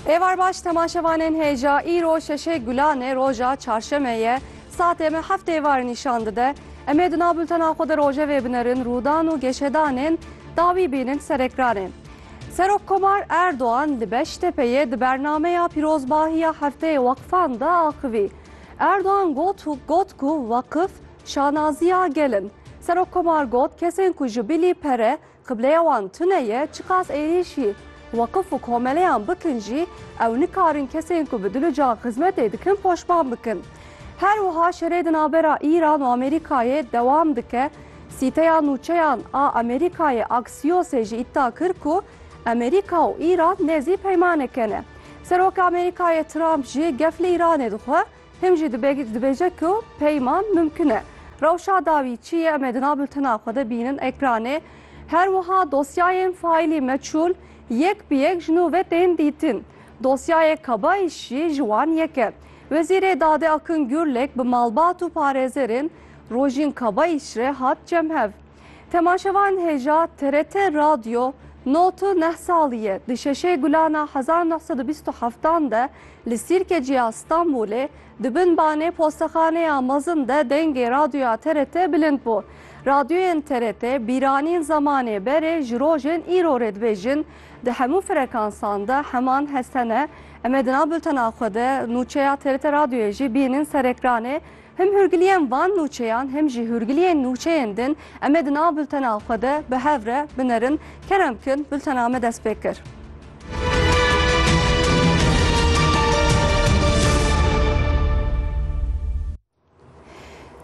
Êvar baş temaşevanên hêja îro şeşê gulanê roja çarşemê ye. Saatê me heft êvar nîşan dide. Em ê di nav bultena xwe de rojevê binerin rûdan û geşedanên dawî bînin ser ekranê. Serok Komar Erdogan li Beştepeyê di bernameya pîrozbahî ya hefteyê weqfan de axivî. Erdogan got got ku weqif şanaziya gel in. Serok Komar got kesên ku ji bilî pere Qibleya wan tune ye, çiqas êrîşî weqif û komeleyan bikin jî ew nikarin kesên ku bi dil û can xizmetê dikin poşman bikin. Her wiha şerê di navbera Îran û Amerîkayê dewam dike. Sîteya Nûçeyan a Amerîkayê Axiosê jî îddia kir ku Amerîka û Îran nêzî peymaneke ne. Seroka Amerîkayê Trump jî gef li Îranê dixwe. Him jî dibêje ku peyman mimkin e. Rewşa dawî çi ye em ê di nav biltena xwe de bînin, ekranê. Her wiha dosyayên faîlî meçûl yek bi yek ji nû ve tên dîtin. Dosyayê Kabayîş jî ji wan yek e. Wezîrê Dadê Akın Gürlek bi malbat û parêzerên rojîn Kabayîş re hat cem hev. Temaşevan hêja TRT Radyo no tu neh salî ye di şeşê gulan a hezar neh sed û bîst û heftan de li Sîrkecî ya Stenbolê di bin banê postexanê ya mezin de dengê radyoya TRT bilind bû. Radyoyên TRT bîranîn zemanê berê ji rojên îro rê dibêjin di hemû frekansan de heman hest hene. Em ê di nav bultena xwe de nûçeya TRT Radyoyê jî bînin ser ekranê Him hûrgiliyên van nûçeyan him jî hûrgiliyên nûçeyên din em ê di nav bultena xwe de bi hev re binerin. Kerem bikin bultena me dest pê kir.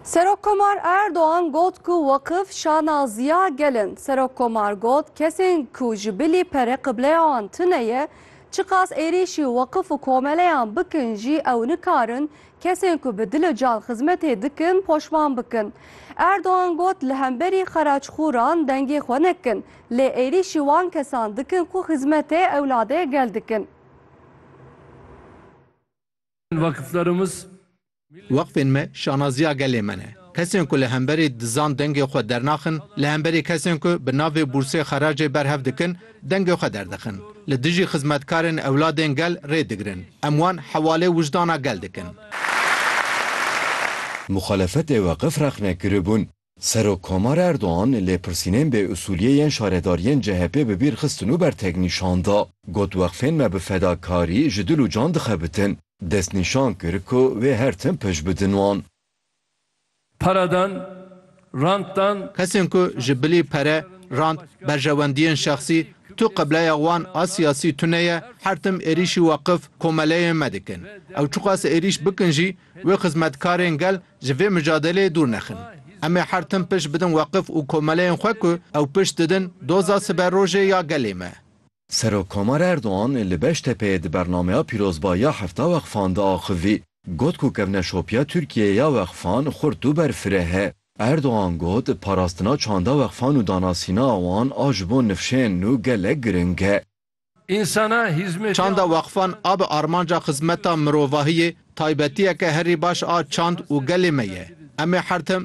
Serok Komar Erdoğan got ku vakıf şanaziya gelin. Serok Komar got kesên ku ji bilî pere qibleyan tune ye, çiqas êrîşî vakıf û komeleyan bikin jî ew nikarin Kesên ku bi dil û can xizmetê dikin poşman bikin. Erdogan got li hemberî xeraçxoran dengê xwe nekin, lê êrîşî wan kesan dikin ku xizmetê ewladê gel dikin. Weqfên me şanaziya gelê me ne. Kesên ku li hemberî dizan dengê xwe dernaxin, li hemberî kesên ku bi navê bûrsê xeracê berhev dikin, dengê xwe derdixin. Li dijî xizmetkarên ewladên gel rê digirin. Em wan hewalê wijdana gel dikin. Muxalefetê Weqif rexne kiribûn. Serokkomar Erdogan lêpirsînên bê usuliyê yên şaredariyên CHP'ê bi bîr xistin û bertek nîşan da. Got weqfên me bi fedakarî ji dil û can dixebitin. Destnîşan kir ku wê her tim pişt bidin wan. Pere dan, rant dan. Kesên ku ji bilî pere, rant, berjewendiyên şexsî, tu qibleya wan a siyasî tune ye, her tim êrîşî weqif, komeleyên me dikin. Ew çiqas êrîş bikin jî, wê xizmetkarên gel ji vê micadeleyê dûr nexin. Em ê her tim pişt bidin weqif û komeleyên xwe ku ew pişt didin doza siberojê ya gelê me. Serokkomar Erdogan li Beştepeyê di bernameya pîrozbahî ya Hefta Wexfan de axivî, got ku kevneşopiya Tirkiyeyê ya wexfan xurt û berfireh e. Erdogan got, Parastina çanda wexfan û danasîna wan a ji bo nifşên nû gelek giring e. Çanda wexfan a bi armanca xizmeta mirovahiyê, taybetiyeke herî baş a çand û gelê me ye. Em ê her tim